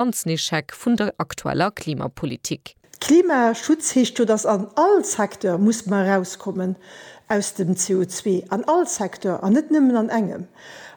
an den Echec vun der aktueller Klimapolitik. Klimaschutz heescht jo, dass an all Secteur muss mer erauskommen aus dem CO2, an all Secteur an net nëmmen an engem.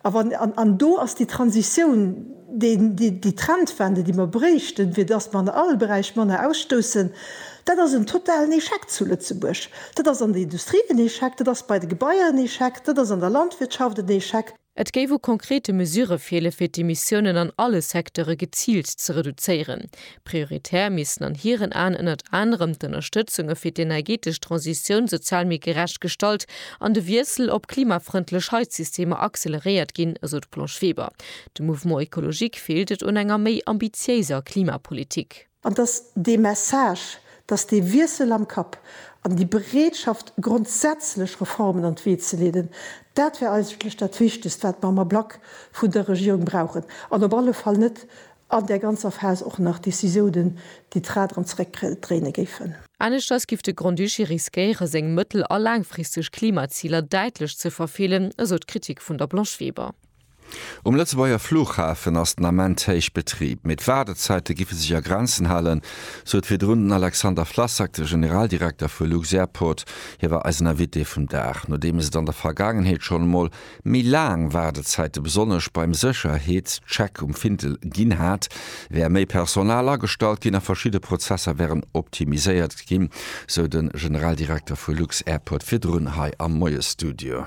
A wann, an do ass déi Transitioun déi Trendwende déi mer bréichten, fir dass mer an all Beräich manner ausstoussen, dat ass en totalen Echec zu Lëtzebuerg. Dat ass an der Industrie en Echec, dat ass bei de Gebaier en Echec, dat ass an der Landwirtschaft en Echec. Et géif u konkrete Mesure feele fir d'Emissiounen an alle Secteure geziilt ze reduzéieren. Prioritär missten an hiren Aen ënnert anerem d'Ënnerstëtzunge fir d'energeetesch Transitioun sozial méi gerecht gestalt an de Wiessel op klimafrëndlech Heizsystemer acceleréiert ginn, esou d'Blanche Weber. Dem Mouvement écologique feelt et un enger méi ambitiéiser Klimapolitik. An dass dee Message, dass dee Wiessel am Kapp an déi Bereetschaft, grondsätzlech Reformen an d'Wee ze leeden, dat wär eigentlech dat Wichtegst, wat mer am Ablack vun der Regierung brauchen, an op alle Fall net an där ganzer Phas och nach Décisiounen, déi d'Rad erëm zeréckdréine géifen. Aneschters giff de Grand-Duché riskéiere seng mëttel a laangfristeg Klimaziler däitlech ze verfeelen, esou d'Kritik vun der Blanche Weber. Um Lëtzebuerger Flughafen ass den Ament héich Betrib, mee d'Waardezäite giffe sech a Grenzen halen, sot virdrun den Alexander Flassak, de Generaldirekter vu lux-Airport. Hie war eisen Invité vum Dag, nodeems et an der Vergaangenheet schonn emol méi laang Waardezäite besonnesch beim Sécherheetscheck um Findel ginn hat, wär méi Personal agestallt ginn a verschidde Prozesser wären optimiséiert ginn, sou de Generaldirekter vu lux-Airport virdrun hei am Moiesstudio.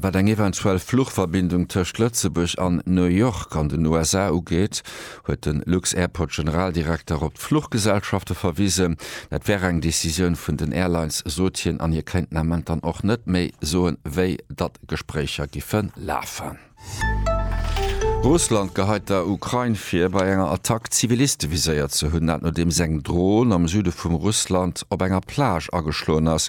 Wat eng eventuell Fluchverbindung tëscht Lëtzebuerg an New York an den USA ugeet, huet de Lux-Airport-Generaldirekter op d'Fluchgesellschafte verwisen. Dat wär eng Decisioun vun den Airlines, sot hien, an hie kéinten am Moment dann och net méi soen, wéi datt Gespréicher giffe lafen. Russland geheit der Ukrain vir, bei enger Attack Ziviliste viséiert ze hunn. Dat nodeems eng Dron am Süde vum Russland op enger Plage ageschloen ass.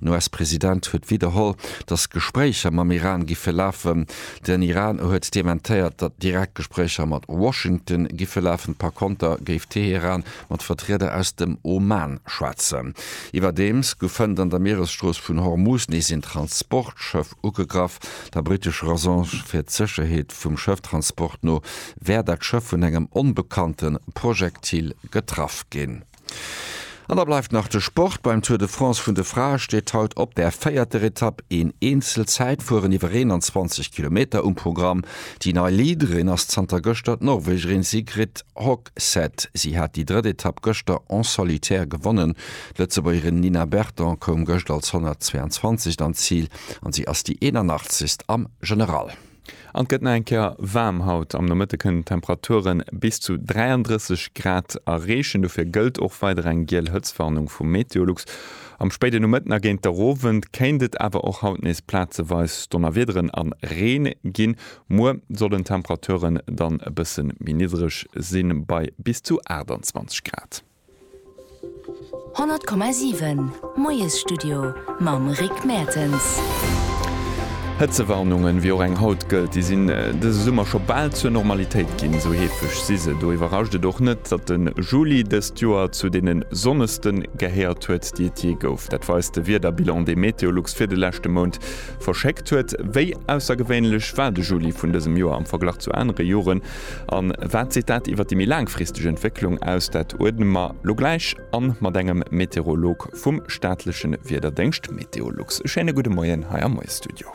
Den US-President huet widderholl, datt d'Gespréicher mam Iran giffe lafen. Den Iran huet dementéiert, datt direkt Gespréicher mat Washington giffe lafen. Par konter géif Teheran mat Vertrieder aus dem Oman schwätzen. Iwwerdeems goufen an der Mieresstrooss vun Hormuz nees een Transportschëff ugegraff. Der brittescher Agence fir d'Sécherheet vum Schëfftransport no wär dat Schëff vun engem onbekannte Projektil getraff ginn. An da bleift nach de Sport. Beim Tour de France vun de Frae steet haut op der véierter Etapp een Eenzelzäitfueren iwwer 21 Kilometer um Programm. Déi nei Leaderin ass zanter gëschter d'Norwegerin Sigrid Hogseth. Si hat déi drëtt Etapp gëschter en solitaire gewonnen. D'Lëtzebuergerin Nina Berton koum gëscht als 122. an d'Zil an si ass déi 81. am General. An et gëtt nach eng Kéier waarm haut. Am Nomëtte kënnen d'Temperature bis zu 33 Grad erreechen. Dofir gëllt och weider eng giel Hëtztwarnung vu Meteolux. Am spéiden Nomëtten a géint der Owend kéint et awer och haut nees plazeweis Donnerwiederen a Reen ginn. Muer sollen d'Temperaturen dann e bësse méi niddreg sinn, bei bis zu 28 Grad. 100,7 Moiesstudio mam Rick Mertens. Hëtzewarnungen, wéi och eng haut gëllt, déi sinn dëse Summer scho bal zur Normalitéit ginn. Esou heefeg si se. Do iwwerrascht et och net, datt de Juli dëst Joer zu deene sonneste gehéiert huet, déi et jee gouf. Dat weist de Wiederbilan, dee Meteolux fir de leschte Mount verschéckt huet. Wéi aussergewéinlech war de Juli vun dësem Joer am Verglach zu anere Joren? An wat seet dat iwwer déi méi laangfristeg Entwécklung aus? Dat uerdne mer lo gläich an mat engem Meteorolog vum staatlechen Wiederdéngscht Meteolux. E schéine gudde Moien hei am Moie Studio.